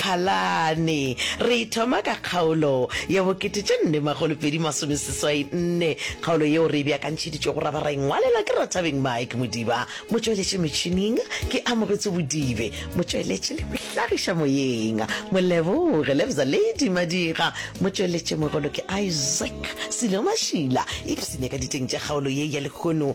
Phalane. Re e thoma ka kgaolo ya bo kete tše nne makgolo pedi masome seswai nne, kgaolo yeo re e beakantšheditšwego ra ba ra e ngwalela ke Rathabeng Mike Modiba, motšweletši metšhining ke Amogetso Bodibe, motšweletši le mohlagiša moyeng Moleboge Lebza Lady Madira, motšweletšimogolo ke Isaac Sello Mašila, ipsene ka diteng tša kgaolo ye ya lehono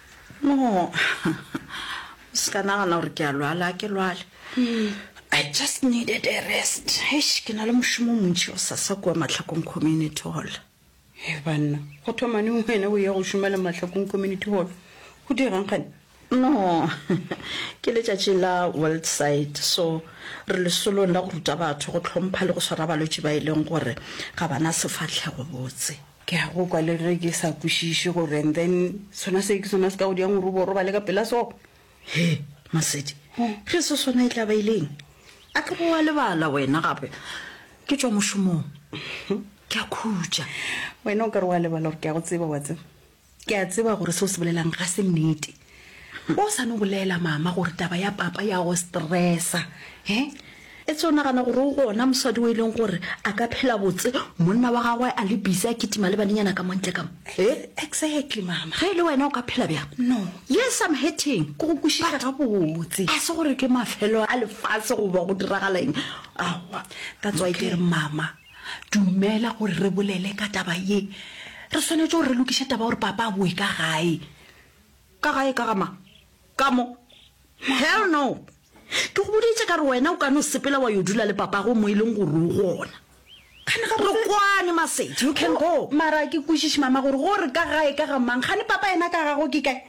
No, o se ka nagana gore ke a lwala, a ke lwale. I just needed a rest. Eish, ke na le mošomo montši o sasa kua Mahlakong Community Hall. He banna, go thoma neng wena o ya go šoma le Mahlakong Community Hall? Go dirang gane? No, ke letšatši la World Sight, so re lesolong la go ruta batho go hlompha le go swara balwetši ba e leng gore ga ba na sefahlego botse. Ke a go kwa le ge ke sa kwešiše gore and then sona se ke sona se ka go diang gore o bo robale ka pela so. He, Masedi, ge se sona e tla ba ileng? A ke bo wa lebala wena gape ke tšwa mošomong. Ke a khutša. Wena o ka re wa lebala gore ke a go tseba, wa tseba. Ke a tseba gore se o se bolelang ga se nnete. Ba o sa no bolela mama gore taba ya papa ya go stressa. He? E tse o nagana gore o gona mosadi o e leng gore a ka phela botse monna wa gagwe a le busy a kitima le banenyana ka montle ka mo. He? Exactly mama. Ge e le wena o ka phela bjang? No. Yes, I'm hurting. Ke go kwešiša ga botse. A se gore ke mafelo a lefase goba go diragala eng. Aowa. That's why ke re mama. Dumela gore re bolele ka taba ye. Re swanetše gore re lokiše taba gore papa a boe ka gae. Ka gae ka ga mang? Ka mo? Hell no! Ke go boditše ka re wena o ka no sepela wa yo dula le papago mo e leng gore o gona. Re kwane, Masedi. You can go. Mara a ke kwešiše mama gore gore ka gae ka ga mang? Gane papa yena ka gagwe ke kae?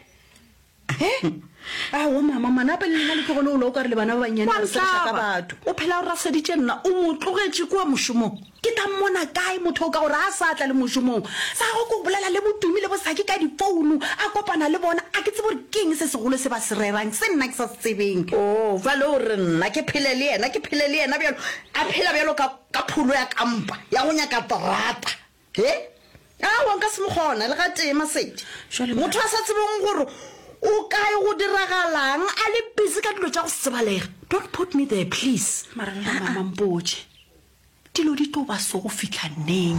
aowa mama manape le lena le tlogole o la o ka re le bana ba bannyane ba sereša ka batho o phela o raseditše nna o mo tlogetše kua mošomong ke tla mmona kae motho o ka gore a sa tla le mošomong sa go ko bolela le botumi le bosaki ka difounu a kopana le bona a ke tsebo gore keng se segolo se ba se rerang se nna ke sa se tsebeng o oh, jale o re nna ke phele le yena ke phele le yena bjalo a phela bjalo ka pholo ya kampa ya go nyaka terata He? Aowa, nka se mo kgona le gatee, Masedi. Jwale Motho a sa tsebeng gore o kae, go diragalang, a le busy ka dilo tša go se tsebalega. Don't put me there, please. Mara lona mama mpotše, dilo di tlo ba so go fihla neng?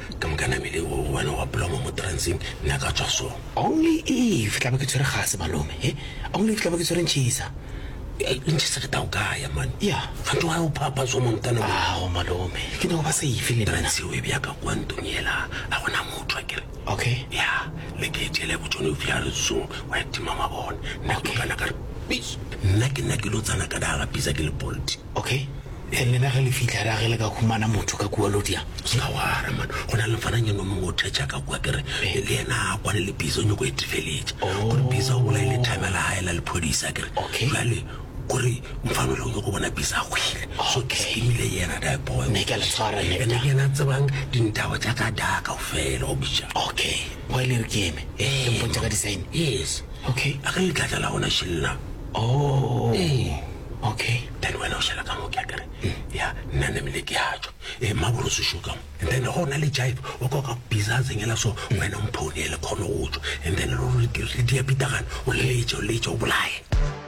Ka moka namele o wena wa bloma mo transeng nna ka tswa so. Only if tla ba ke tshwere gase malome he only if tla ba ke tshwere ntšhisa ntšhisa ke tao kaya man ya gante wa o phapha so montana ao malome ke no ba safe le transe o e bya ka kwa ntong yela a gona motho a kere okay ya le ke tšele go tšone o bya re so wa tima mabone nna ke kana ka re peace nna ke nna ke lo tsana ka daga pisa ke le bolt Okay, and lena ge le fihla ra ge le ka humana motho ka kua Lodia. Ska wara man, go na le mfananyana o mongwe o thetša ka kua kere eh. le yena a kwane le Biza o nyoko e tefeletša oh. gore Biza o bolaile thame la gae la lephodisa kere okay. Jale kore mfanole o nyoko bona Biza a hwile okay. So ke skimile yena die boy ne ke le tshwara ne ene ke na tsebang dintabo tša ka da ka ofela o bitša okay wa ile re ke eme eh, ke mpontša ka design yes okay a ka le tlatla la gona shella oh eh Okay. Then wena o šala ka mo ke a kere. Ya nna ne mele ke a tšwa. Eh maboro se šo ka mo. And then go na le jive o ka ka biza tsengela so wena mphone le khone go tšwa. And then lo re di di a pitagana o le tšo le tšo bolaye.